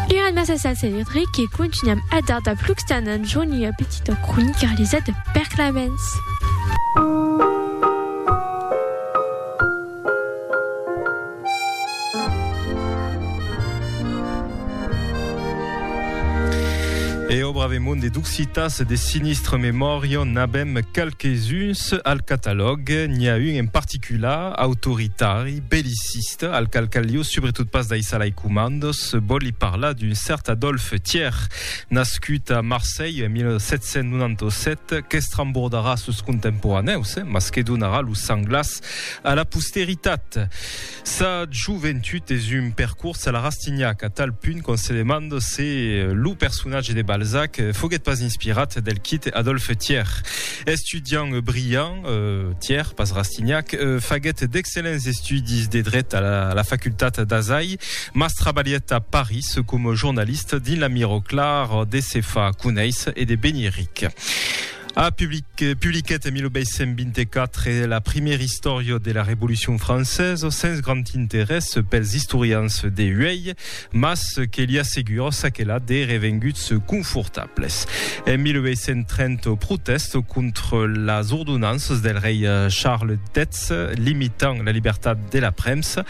Era massa sa celebre que contunham a dar dab Luxtanan John ua petita cronica realizada per Clemens. E au bravemond de d'occitas de sinistre memòria n'abem qualques-uns al catalòg, n'i a un en particular, autoritari, belliciste, al qual calió subretot pas daissar lai comandos, vòli parlar d'un cèrt Adolphe Thiers, nascut a Marselh en 1797, qu'estrembordarà sos contemporanèus, mas que donarà lo sang glaç a la posteritat. Sa joventut es un percors a la Rastignac, a tal punt qu'on se demanda se lo personatge de Balzac foguèt pas inspirat del quite Adolphe Thiers. Estudiant brilhant, Tièr, pas Rastignac, faguèt d'excellents estudis de dret a la facultat d'Azai, mas trabalhèt a París coma jornalista dins la miró clar de se far conéisser e de venir ric. A publiquèt en 1824 la primièra istòria de la Revolucion francesa sens grand interès pels istorians de uèi. Mas que li asseguro çaquelà de revenguts confortables. En 1830 o protèst contra las ordonanças del rei Charles X limitant la libertat de la premsa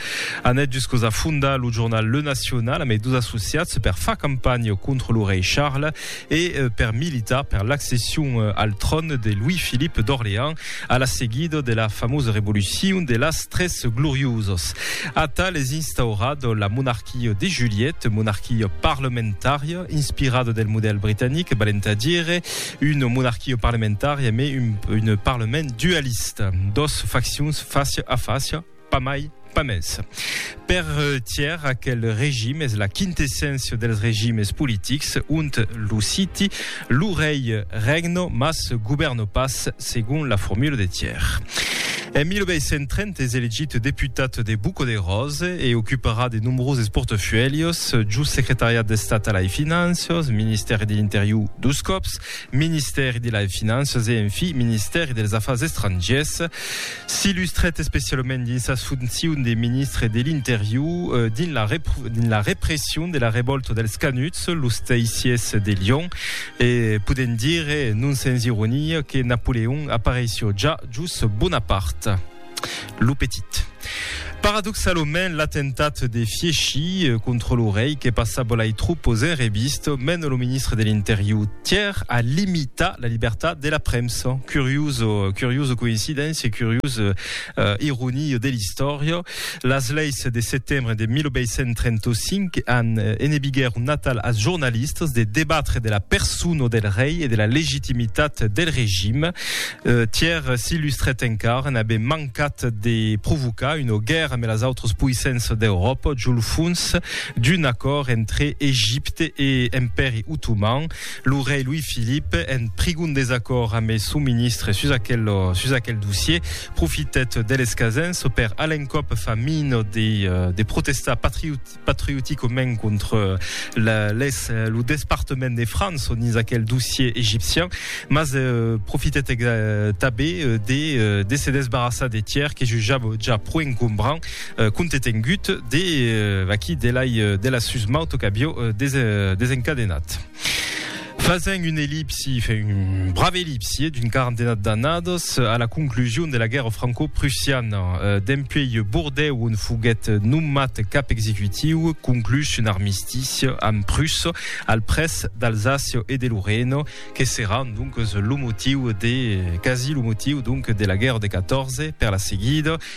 anèt juscos a fondar lo jornal Le National amb es dos associats per far campanha contra lo rei Charles e per militar per l'accession al tròn de Louis-Philippe d'Orléans a la seguida de la famosa Revolucion de las Tres Gloriosas. Atal es instaurat la monarquia de Juliette, monarquia parlamentària inspirada del modèl britanic, valent a dire una monarquia parlamentària, mai un parlament dualista, dos faccions fàcia a fàcia, Pas mai, pas mès. Per Thiers, aquel regime es la quintesséncia dels regimes politics, ont lo siti, lo rei regno, mas govèrno pas, segon la formula de Thiers. En 1830 es elegit deputat de Buco de Rose e ocuparà de nombroses portafuèlhos, jos Secretariat d'Estat a lai Finanças, Ministèri de l'Interior dos còps, Ministèri de lai Finanças e, en fi, Ministèri dels Afars Estrangiers. S'illustrèt especialament dins sas foncions de ministre de l'Interior dins la dins la repression de la revòlta dels Canuts, los Teissiers de Lion, e podèm dire, non sens ironia, que Napoleon apareissió ja jos Bonaparte, lo petit. Paradoxalament, l'atemptat de Fieschi contra lo rei que passa bolai tropos en revista mena lo ministre de l'Interior Thiers a limitar la libertat de la premsa. Curioso, curioso coincidéncia, curiosa uh, ironia de l'istòria. Las leis de setembre de 1835 an enebiguèr un natal als jornalistas de debatre de la persona del rei e de la legitimitat del regime. Uh, Thiers s'illustrèt encara, n'avè mancat cat de provocar una guèrra amb las autras poissenças d'Euròpa jo lo fons d'un acòrd entre Egipte e Empèri Otoman. Lo rei Louis-Philippe, en prigon desacòrd amb son ministre sus aquel, sus aquel dossier, profitèt de l'escasença per a l'encòp fa mina de, de protestar patriot, patriotico men contre la les lo despartement de France on is aquel dossier egipcien mas euh, profitet euh, tabé euh, de, euh, de se desbarrassar de tiers que jujab ja pro encombrant euh, contetengut de euh, aquí de la, de la susmaut qu'avio euh, des, euh, desencadenat. Fasent un ellipsi, un brave ellipsi d'un quarantena d'annadas a la conclusion de la guèrra franco-prussiana. Dempuèi Bordèu, on foguèt nomat cap executiu, conclús un armistici amb Prussa al près d'Alsàcia e de Lorena, que serà donc lo motiu de, quasi lo motiu donc, de la guèrra de 14 per la seguida.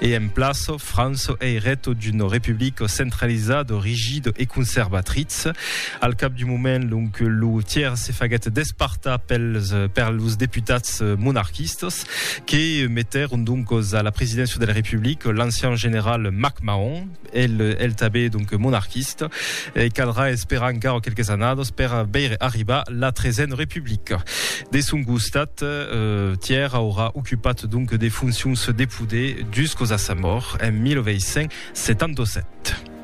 e en plaço Franço ei reto d'un republico centralizado, rigido e conservatritz. Al cap d'un moment, lonc, lo tièr se faguèt despartar pels, per los deputats monarquistas, que metèron doncos a la presidéncia de la Republica l'ancian general MacMahon, El tanben donc monarquista. E caldrà esperar encara quelques annadas per veire arribar la tresena republica. De son costat, Tièr aurà ocupat donc de foncions de poder juscos a sa mòrt en 1877.